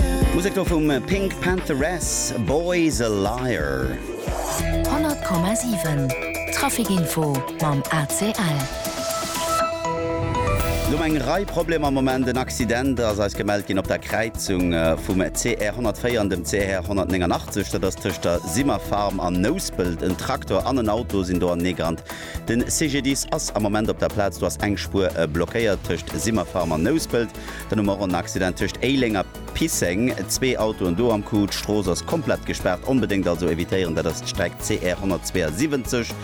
D'Musek do vum Pink Pantheress, Boy's a Liar. 100,7 Trafikinfo mam ACL. No eng Rei Problemer am Moment, en Accident ass eis gemellt ginn op der Kräizung vum CR 104 an dem CR 189, dat ass tëscht der Simmer Farm an Nouspelt. En Traktor an en Auto sinn do aneegerannt. Den CGDIS ass am Moment op der Plaz, do ass eng Spuer blockéiert tëscht Simmer Farm an Nouspelt. Den um Morron Accident tëscht Éileng a Pisseng, zwee Autoen do am Coup, d'Strooss ass komplett gespaart, onbedéngt also evitéieren, dat ass d'Streck CR 172.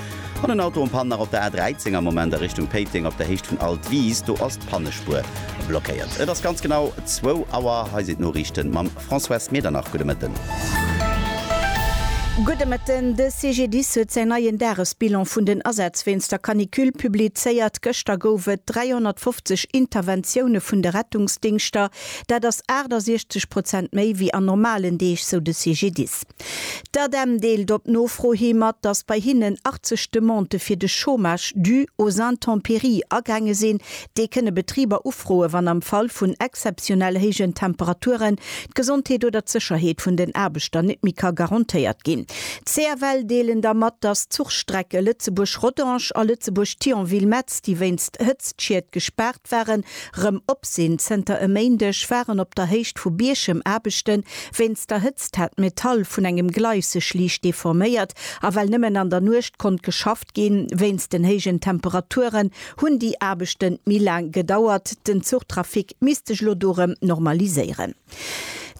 An en Auto um Pan nach op der A13 am Moment a Richtung Péiteng op der Héicht vun Altwis, do ass d'Pannespuer blockéiert. Et ass ganz genau zwou Auer, hei sinn d'Noriichten mam Françoise Medernach, Gudde Mëtten. Gudde Mëtten. De CGDIS huet säin neien Dagesbilan vun den Asätz wéinst der Canicule publizéiert. Gëschter gouf et 350 Interventioune vun de Rettungsdingschter. Dat ass 68 Prozent méi wéi an normalen Deeg, sou de CGDIS. D'ADEM deelt op Nofro hi mat, datt bei hinnen 80 Demandë fir de Chômage dû aux intempéries agaange sinn. Déi kënne Betriber ufroe wann am Fall vun exzeptionell héijen Temperaturen d'Gesondheet oder d'Sécherheet vun den Aarbechter net méi ka garantéiert ginn. D'CFL deelen da mat, datt d'Zuchstrecke Lëtzebuerg-Rodange a Lëtzebuerg-Thionville-Metz, déi wéinst Hëtztschied gespaart, D'Waren rëm op sinn. Zënter e Méindeg waren op der Héicht vu Bierchem Aarbechten. Wéinst der Hëtzt hat d'Metall vun engem Gleis sech liicht deforméiert a well nëmmen an der Nuecht konnt geschafft ginn wéinst den héijen Temperaturen, hunn déi Aarbechten méi laang gedauert. Den Zuchtrafic misst sech elo do rëm normaliséieren.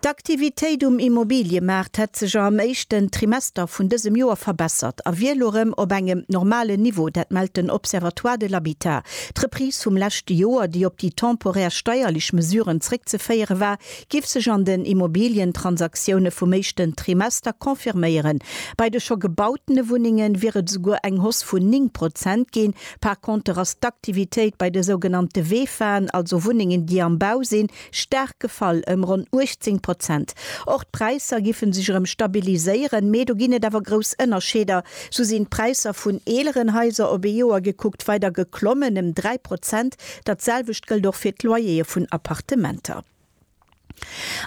D'Aktivitéit um Immobiliemaart hätt sech am éischten Trimester vun dësem Joer verbessert a wier elo erëm op engem normalen Niveau. Dat mellt den Observatoire de l'habitat. D'Reprise vum leschte Joer, déi op déi temporär steierlech Mesuren zréckzeféiere war, géif sech an den Immobilientransaktiounen vum éischten Trimester confirméieren. Bei de scho gebautene Wunnenge wier et esouguer eng Hausse vun 9 Prozent ginn. Par conter ass d'Aktivitéit bei de sougenannte VEFAen, also Wunnengen, déi am Bau sinn, Staark gefall, ëm ronn 18 Prozent. Och d'Präisser giffen sech erëm stabiliséieren, mee do ginn et awer grouss Ënnerscheeder. Sou sinn d'Präisser vun eeleren Haiser op ee Joer gekuckt weider geklommen, ëm 3 Prozent. Dat selwecht gëllt och fir d'Loyere vun Appartementer.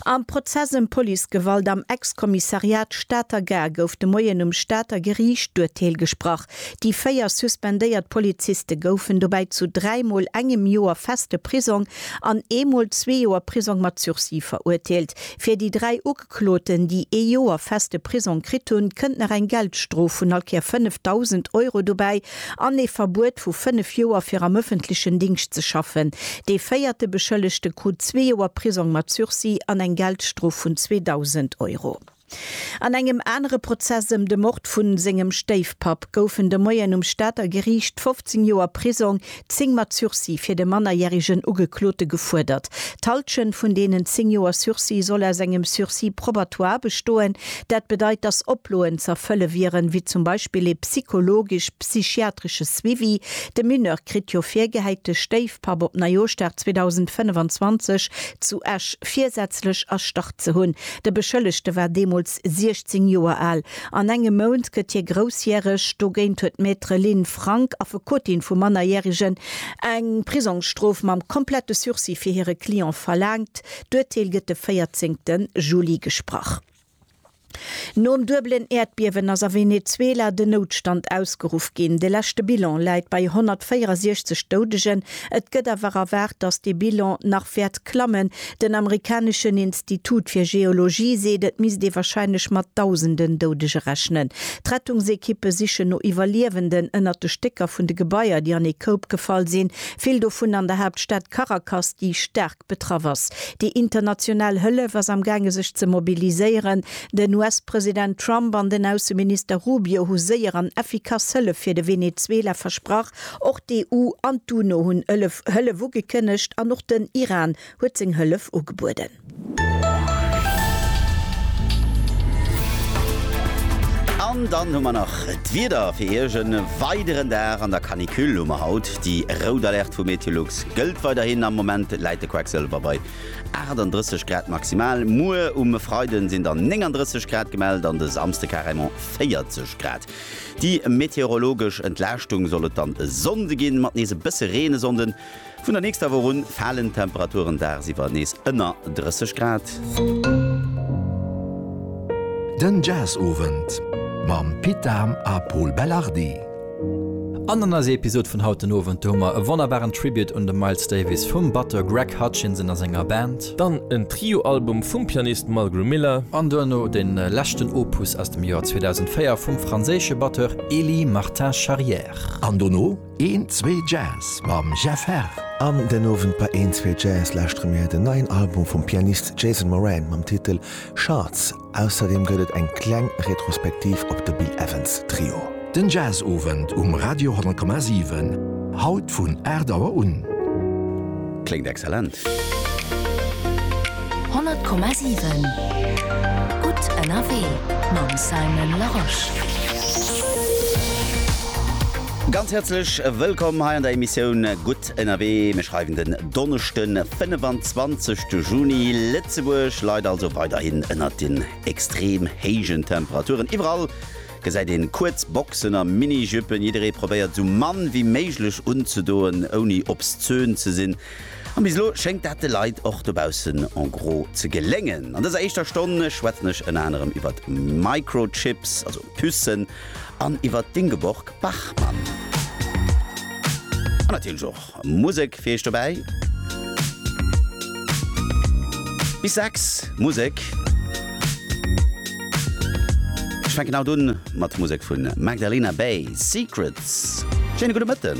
Am Prozess ëm Policegewalt am Ex-Kommissariat Stater Gare gouf de Moien um Stater Geriicht d'Urteel gesprach. Déi véier suspendéiert Poliziste goufen dobäi zu dräi Mol engem Joer feste Prisong an ee Mol zwee Joer Prisong mat Sursis verurteelt. Fir déi dräi Ugekloten, déi ee Joer feste Prisong kritt hunn, kënnt nach eng Geldstrof vun all Kéier 5.000 Euro dobäi an ee Verbuet vu fënnef Joer fir am ëffentlechen Dingscht ze schaffen. Dee véierte Beschëllegte krut zwee Joer Prisong mat Sursis an eng Geldstrof vun 2.000 Euro. An engem anere Prozess ëm de Mord vu sengem Stéifpapp goufen de Moien um Stater Geriicht 15 Joer Prisong, 10 mat Sursis, fir de mannerjärigen Ugeklote gefuerdert. D'Halschent vun deenen 10 Joer Sursis soll aus engem Sursis probatoire bestoen. Dat bedeit, datt Oploen z'erfëlle wieren, wéi zum Beispill ee psychologesch, psychiatresche Suivi. De Mineur kritt jo virgehäit, de Stéifpapp op Neijooschdag 2025 zu Esch virsätzlech erstarrt Ze hunn. De Beschëllegte war deemools 16 Joer al. An engem Mount gëtt hie groussjäreg. Dogéint huet d'Maître Lynn Frank, Affekotin vu Mannerjärigen, eng Prisongsstrof mam komplette Sursis fir hire Client verlaangt. D'Urteel gëtt de 14 Juli gesprach. Nom duebelen Äerdbiewen ass a Venezuela den Noutstand ausgeruff ginn. De leschte Bilan läit bei 164 Doudegen. Et gëtt awer erwaart, datt dee Bilan nach wäert klammen. Den amerikaneschen Institut fir Geologie seet, et misst ee warscheinlech mat Dausenden Doudege rechnen. D'Rettungsekippe sichen no Iwwerliewenden ënnert de Stécker vun de Gebaier, déi an ee Koup gefall sinn, vill dovun an der Haaptstad Caracas, déi staark Irak betraff ass. Déi international Hëllef ass am gaange sech ze mobiliséieren. Den US-President Trump an den Ausseminister Rubio hu séier an effikass Hëllef fir de Venezuela versprach. Och d'EU an d'UNO hunn Hëllef ugekënnegt an och den Iran huet seng Hëllef ugebueden. An dann hu mer nach d'Wieder fir Iech. E weideren Dag an der Canicule hu mer haut. Déi rout Alerte vu Meteolux Gëllt weiderhin, am Moment läit de Quecksëlwer bei 38 Grad maximal. Muer um Freide sinn dann 39 Grad gemellt an de Samsde carrément 40 Grad. Déi meteorologesch Entlaaschtung soll et dann e Sonnde ginn, mat nees e bësse Reen. E Sonnde vun der nächster Woch un falen d'Temperaturen dagsiwwer nees ënner 30 Grad. Den Jazzowend mam Pit Dahm a Pol Belardi. An an eiser Episod vun haut den Owend, do hu mer e wonnerbaren Tribute un de Miles Davis vum Batteur Greg Hutchinson a senger Band. Dann en Trio-Album vum Pianist Mulgrew Miller. An duerno de leschten Opus aus dem Joer 2004 vum franséische Batteur Elie Martin Charrière. An dono Een Zwee Jazz mam Jeff Herr. An den Owend bei Een Zwee Jazz lauschtere mir den neien Album vum Pianist Jason Moran mam Titel Shards. Ausserdeem gëtt et eng kleng Retrospektiv op de Bill Evans Trio. Den Jazzowend um Radio 10,7, haut vun 8 Auer un. Kléngt excellent! 100,7 Gutt ënnerwee mam Simon Larosche. Ganz häerzlech wëllkomm hei an der Emissioun Gutt Ënnerwee, mir schreiwen den Donneschden 25 de Juni. Lëtzebuerg leit also weiderhin ënnert den extrem héijen Temperaturen. Iwwerall gesäit een kuerz Boxen a Mini-Jüppen. Jidderee probéiert sou mann wéi méiglech unzedoen, ouni obszön ze sinn. An bis elo schéngt dat de Leit och dobaussen en gros ze geléngen. An dëser éischter Stonn schwätzen ech ënner anerem iwwert Microchips, also Pucen, an iwwer d'Ingeborg Bachmann. An natierlech och Musek fir iech dobäi. Bis 6 Musek. Ech fänken haut un mat Musek vun Magdalena Bay, Secrets. Schéine gudde Mëtten.